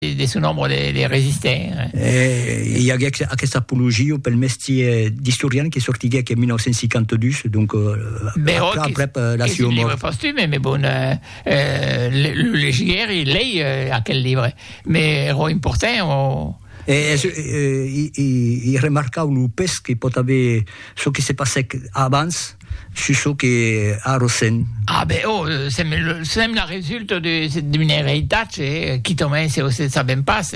de son òme de resistent. E i aguec aquesta apologia pel mestier d'istorian que sortiguec en 1952, donc aprèp aprèp la sua mòrt. Qu'es un libre postume, mais bon, lo legiguèri, lei aquel libre, mais ero important o. E es un, i remarcau lo pes que pòt aver çò que se passèc abans. Sus çò que arrosèm. A ben, ò, sèm, sèm la resulta d'un eritatge qui tanben se se sabèm pas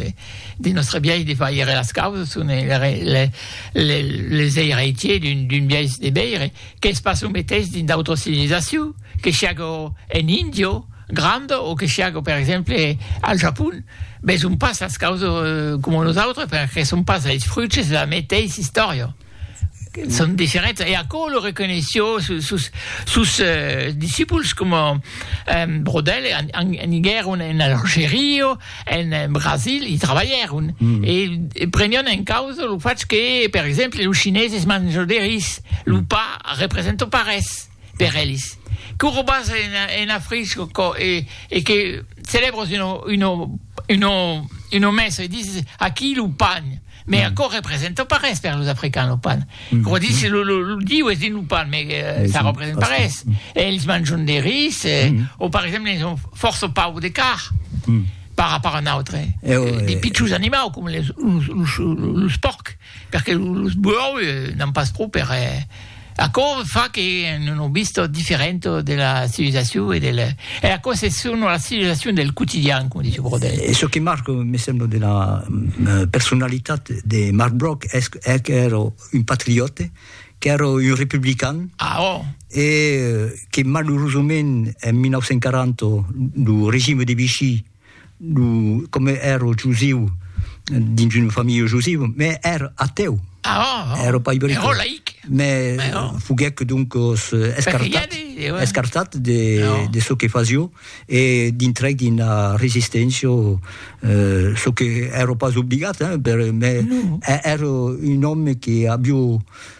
de nòstre biais de faire las causas, son les les eiratiers d'un d'un biais de veire qu'es pas çò meteis dins d'autras civilisacions, que siágo en India granda o que siágo per exemple al Japon, veson pas las causas coma nosautres perque son pas es fruches de la meteis istòria. son diferents e aquò lo reconeishió sus sus discipuls coma Brodel aniguèron en Algeria en Brasil i trabalhèron e prenion en causa lo fach que per exemple los chineses manjan de ris lo pa representa pas res per elis, que o robas ena frisco e que celèbres una messa e dises aquí lo pan, mès aquò representa pas res per los africans lo pan, aquò dise lo diu es dins lo pan, mès ça representa pas res, elis manjon de ris o per exemple elis son fòrça paur de car par rapòrt a n'autre, de pichons animaus coma los pòrcs. Perque los buòu n'an pas pro per aquò fa que non o vista diferenta de la civilizacion e del e aquò se son la civilizacion del quotidian coma dice Brodel. E çò que marca me sembla de la personalitat de Marc Broc es qu'èra un patriòte, qu'èra un republican. Ah ò! E que malurosament en 1940 lo regime de Vichy Lo, comme ero jusiu, dins una familha jusiu, me ero ateu. Ah, oh, oh. Ero pas ibric. Ero laic. Me Mais oh. foguec donc os escartat, de, ouais. escartat de, oh. de ce que fasio e dintrec d'una resistència, euh, ce que ero pas obligat, hein, per, mais no. ero un homme que avio